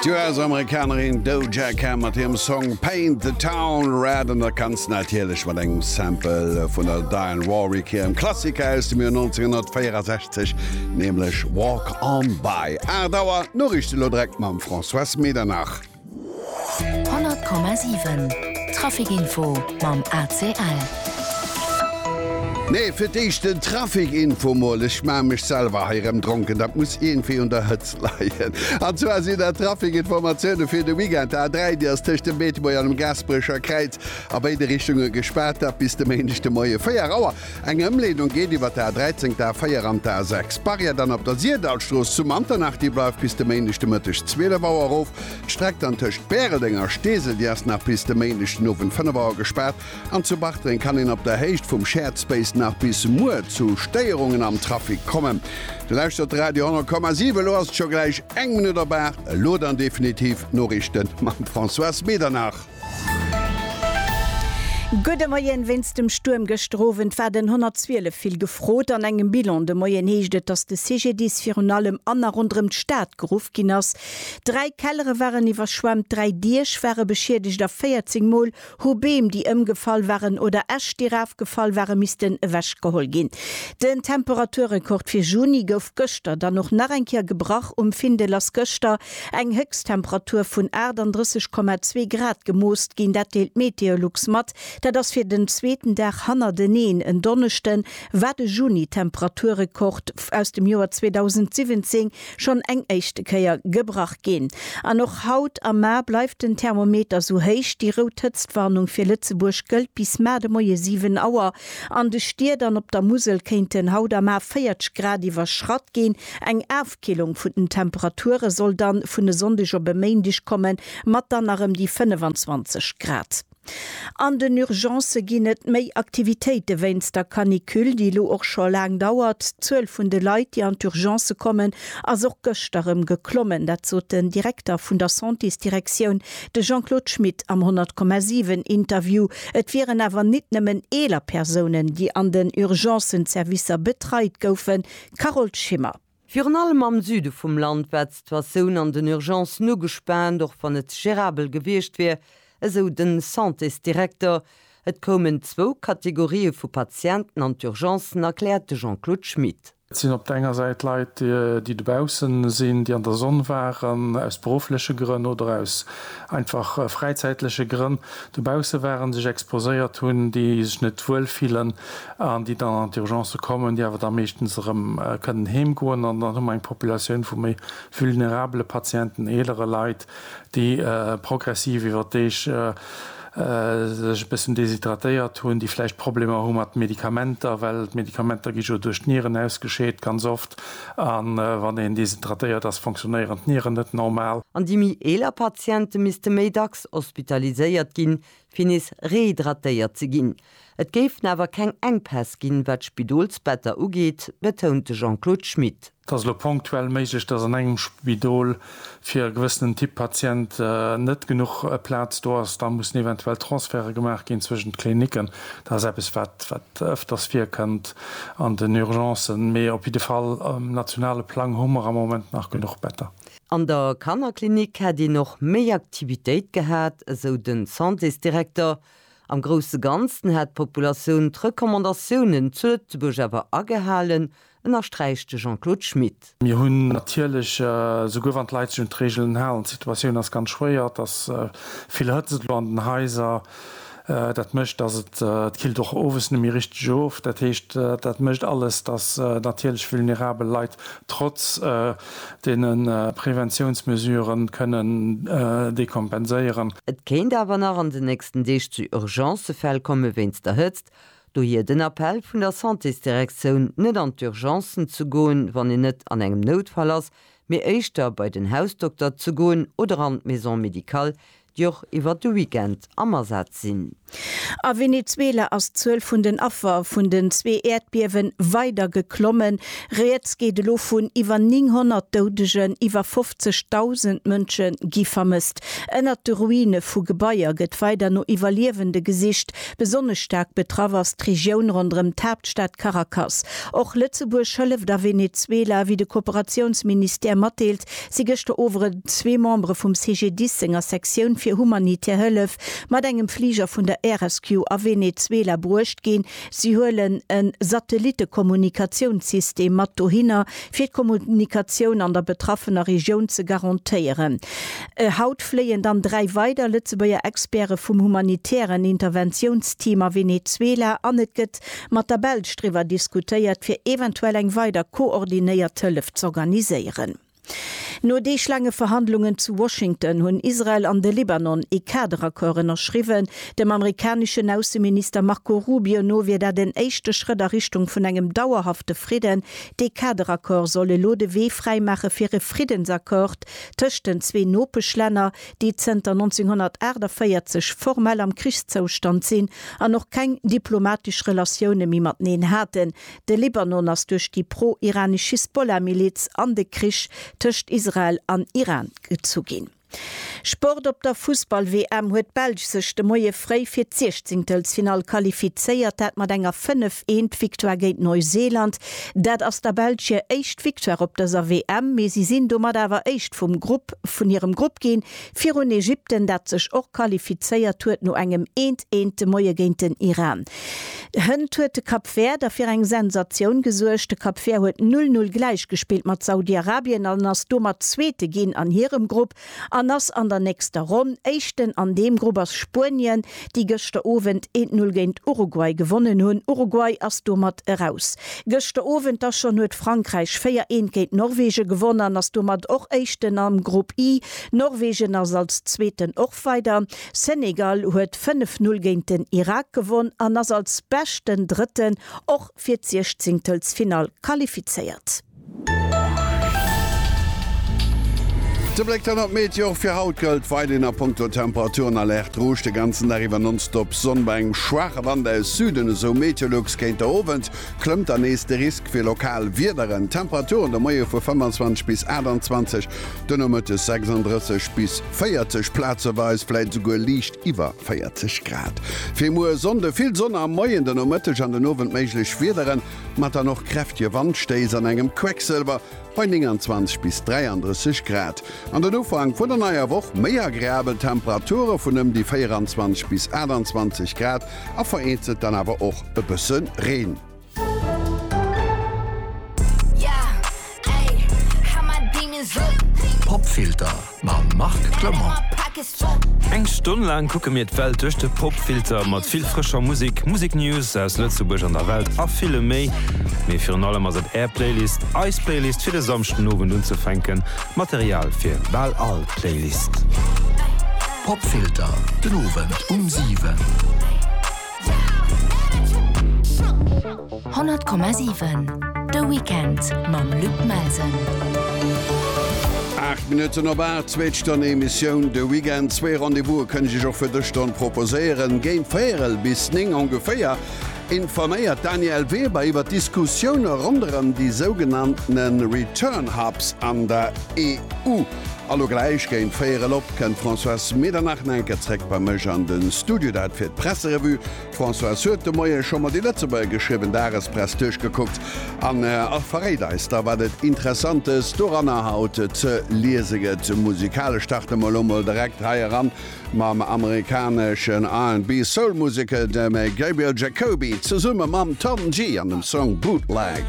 D'US-Amerikanerin Doja Cat mat hirem Song Paint the Town Red an dat Ganzt natierlech mat engem Sample vun der Dionne Warwick hirem Klassiker aus dem Joer 1964, nämlech Walk On By. 8 Auer, d'Noriichten elo direkt mam François Medernach. 100,7 Trafic-Info mam ACL. Nee, fir d'éischt den Trafic-Info mol. Ech maache mech selwer hei rëm dronken, dat muss iergendwéi un der Hëtzt leien. An zwar sinn dat d'Trafic-Informatioune fir de Weekend. D'A3, déi ass tëscht dem Beetebuerger an dem Gaasperecher Kräiz a béide Richtunge gespaart, dat bis de Méindeg de Moie 4 Auer. Eng Ëmleedung geet iwwer d'A 13, d'A 4 an d'A 6. D'Barrière dann op der Sirdallstrooss zu Manternach, déi bleift bis de Méindeg de Mëtteg 12 Auer erof. D'Streck dann tëscht Bäreldeng a Steesel, déi ass nach bis de Méindeg den Owend 5 Auer gespaart. An zu Bartreng kann een op der Héicht vum Shared Space nach bis muer zu Stéierungen am Trafic kommen. Dir lauschtert de Radio 10,7, elo ass et scho gläich eng Minutt op 8. Elo dann definitiv d'Noriichten mam Françoise Medernach. Gudde Moien, Wéinst dem Stuerm gëschter Owend war den 112 vill gefrot. An engem Bilan de Moien heescht et, datt de CGDIS virun allem an a ronderëm d'Stad geruff ginn ass. Dräi Kellere waren iwwerschwemmt, dräi Diech ware beschiedegt a 14 Mol hu Beem, déi ëmgefall waren, oder Äscht, déi rafgefall waren, missten ewechgeholl ginn. Den Temperaturrekord fir Juni gouf gëschter dann och nach eng Kéier gebrach. Um Findel ass gëschter Eng Héchsttemperatur vun 38,2 Grad gemooss ginn, dat deelt Meteolux mat. Dat ass fir den zweeten Dag hannerteneen en Donneschde war de Juni-Temperaturrekord aus dem Joer 2017 schonn eng éischte Kéier gebrach ginn. An och haut am Mar bleift den Thermometer sou héich. Déi rout Hëtztwarnung fir Lëtzebuerg gëllt bis mar de Moie 7 Auer. An de Stied an op der Musel kéinten haut am Mar 40 Grad iwwerschratt ginn. Eng D'Killung vun den Temperature soll dann vun e Sonndeg op e Méindeg kommen, mat dann nach ëm déi 25 Grad. An den Urgencë ginn et méi Aktivitéite wéinst der Canicule, déi elo och scho laang dauert. D'Zuel vun de Leit, déi an d'Urgencë kommen, ass och gëschter erëm geklommen. Dat sot den Direkter vun der Santésdirektioun, de Jean-Claude Schmit am 10,7 Interview. Et wieren awer nit nëmmen eeler Persounen, déi an den Urgencen-Servicer betreit goufen. Carole Schimmer. Virun allem am Süde vum Land war d'Situatioun an den Urgencen ugespaant, och wann et gérabel gewiescht wier, esou de Santésdirekter. Et koumen zwou Kategorië vu Patienten an d'Urgencen, erkläert de Jean-Claude Schmit. Et sinn op der enger Säit Leit, déi dobausse sinn, déi an der Sonn waren, aus beruffleche Grënn oder aus einfach fräizäitleche Grënn dobausse waren, sech exposéiert hunn, déi sech net wuel fillen, an déi dann an d'Urgencë kommen, déi awer da meeschtens erëm kënnen heem goen an dann hu mer eng Populatioun vu méi vulnerabele Patienten, eelere Leit, déi progressiv iwwer d'Deeg sech e bëssen deshydratéiert hunn, déi vläicht Problemer hu mat Medikamenter, well d'Medikamenter gi jo duerch d'Nieren ausgescheet ganz oft, a wann een deshydratéiert ass, fonctionnéieren d'Nieren net normal. An déi méi eeler Patiente misste méi dacks hospitaliséiert ginn, fir nees rehydratéiert ze ginn. Et géifen awer keng Enkpäss ginn, wat d'Spidolsbetter ugeet, betount de Jean-Claude Schmit. Et ass elo ponktuell méiglech, datt an engem Spidol fir e gewëssenen Typ Patient net genuch Plaz do ass. Da mussen eventuell Transferte gemaach ginn zwëschen d'Klinicken. Dat ass eppes, wat ëfters virkënnt an den Urgencen. Mee op jidde Fall um nationale Plang hu mer am Moment nach genuch Better. An der Kannerklinik hätt een och méi Aktivitéit gehat, esou de Santésdirekter. Am grousse Ganzen hätt d'Populatioun d'Recommandatiounen zu Lëtzebuerg awer agehalen, ënnersträicht de Jean-Claude Schmit. Mir hunn natierlech, esouguer wann d'Leit sech un d'Reegelen halen, d'Situatioun ass ganz schwéier, dass vill Hëtzt et elo an den Haiser Dat mécht, dass et d'Kilt och owes net méi richteg of. Dat heescht, dat mécht alles, dass natierlech vulnerabel Leit trotz deene Preventiounsmesuren kënnen dekompenséieren. Et kéint awer nach an den nächsten Deeg zu Urgencefäll komme wéinst der Hëtzt. Dohier den Appell vun der Santésdirektioun, net an d'Urgencen ze goen, wann een net an engem Noutfall ass, mee éischter bei den Hausdokter ze goen oder an d'Maison médicale, déi och iwwert de Weekend am Asaz sinn. A Venezuela ass d'Zuel vun den Affer vun den zwee Äerdbiewen weider geklommen. Rieds geet elo vun iwwer 900 Doudegen, iwwer 50.000 Mënsche gi vermësst. Ënnert de Ruine vu Gebaier gëtt weider no Iwwerliewende gesicht. Besonnesch staark betraff ass d'Regioun ronderëm d'Haaptstad Caracas. Och Lëtzebuerg hëlleft a Venezuela, wéi de Kooperatiounsministère matdeelt. si gëschter Owend zwee Membere vum CGDIS senger Sektioun fir humanitär Hëllef mat engem Fliger vun der Air Rescue a Venezuela bruecht ginn. Si huelen e Satellitte-Kommunikatiounssystem mat dohinner, fir d'Kommunikatioun an der betraffener Regioun ze garantéieren. Haut fléien dann dräi weider Lëtzebuerger Experte vum humanitären Interventiounsteam a Venezuela an et gëtt mat der Belsch driwwer diskutéiert, fir eventuell eng weider koordinéiert Hëllef z'organiséieren. No Deeg laange Verhandlungen zu Washington hunn Israel an de Libanon ee Kaderaccord ënnerschriwwen. Dem amerikaneschen Ausseminister Marco Rubio no wier dat en éischte Schrëtt a Richtung vun engem dauerhafte Fridden. Dee Kaderaccord soll elo de Wee fräimaache fir e Friddensaccord tëscht den zwee Nopeschlänner, déi zënter 1948 formell am Krichszoustand sinn an och keng diplomatesch Relatioune méi mateneen haten. De Libanon ass duerch déi pro-iranesch Hisbollah-Miliz an de Krich tëscht Israel an Iran gezu ginn. Sport Op der Fussball-WM huet d'Belsch sech de Moie fréi fir d'Siechzéngtelsfinall qualifizéiert, dat mat enger 5, 1 Victoire géint Neuseeland. Dat ass der Belsch hir éischt Victoire op dëser WM, mee si sinn domat awer éischt vum Grupp vun hirem Grupp ginn, virun Ägypten, dat sech och qualifizéiert huet no engem eent eent de Moie géint den Iran. Hënt huet de Cap Vert da fir eng Sensatioun gesuergt. De Cap Vert huet null null gläichgespillt mat Saudi-Arabien an ass domat Zweete ginn an hirem Grupp. an ass an der nächster Ronn Éischten. An deem Grupp ass Spuenien, déi gëschter Owend een Null géint Uruguay gewonnen hunn. Uruguay ass domat eraus. Gëschter Owend da schonn huet Frankräich 4 eent géint Norwegen gewonnen an ass domat och Éischten am Grupp I. Norwegen ass als Zweeten och weider. Senegal huet 5 Null géint den Irak gewonn an ass als beschten Drëtten och fir d'Siechzingtelsfinall qualifizéiert. De Bléck dann op d'Meteo. Och fir haut gëllt weiderhin a Punkto Temperaturen Alerte Rouge. De ganzen Dag iwwer nonstop Sonn bei engem schwaache Wand aus Süden, esou Meteolux. Géint de Owend klëmmt dann nees de Risk fir lokal Wiederen. Temperaturen de Moie vu 25 bis 28, de Nomëttes 36 bis 40, plazeweis vläit esouguer liicht iwwer 40 Grad. Fir muer Sonnde vill Sonn am Moien, de Nomëtteg an den Owend méiglech Wiederen. Mat dann och kräftige Wandstéiss an engem Quecksëlwer bei 29 bis 33 Grad. An den Ufank vun der neier Woch méi agreabel Temperature vun ëm déi 24 bis 28 Grad a vereenzelt dann awer och e bësse Reen. Popfilter mam Marc Clement. Eng Stonn laang kucke mir d'Welt duerch de Popfilter, mat vill frëscher Musek, Museknews aus Lëtzebuerg an der Welt a villem méi. Mee virun allem ass et Är Playlist, eis Playlist fir de Samschdenowend unzefänken. Material fir bal all Playlist. Popfilter, den Owend um 7. 100,7 De Weekend mam Luc Melsen. Aacht Minutten op Aacht, zweet Stonn Emissioun de Weekend. Zwee Rendez-vouse kënn ech iech och fir dës Stonn proposéieren. Géint véierel bis néng ongeféier informéiert d'Danièle Weber iwwer d'Diskussioune ronderëm déi sougenanntene Return Hubs an der EU. Alo gläich géint 4 el op kënnt d'Françoise Medernach na enker zréck bei mech an de Studio, dat fir d'Presserevue. D'Françoise huet de Moie scho mat de Lëtzebuerger geschriwwen Dagespress duerchgekuckt an verréit eis da wat et Interessantes doranner haut ze liese gëtt. Musikalesch starte mer elo mol direkt hei eran mam amerikaneschen R&B-Soul-Museker dem Gabriel Jacoby zesumme mam Tom Gee an dem Song Bootleg.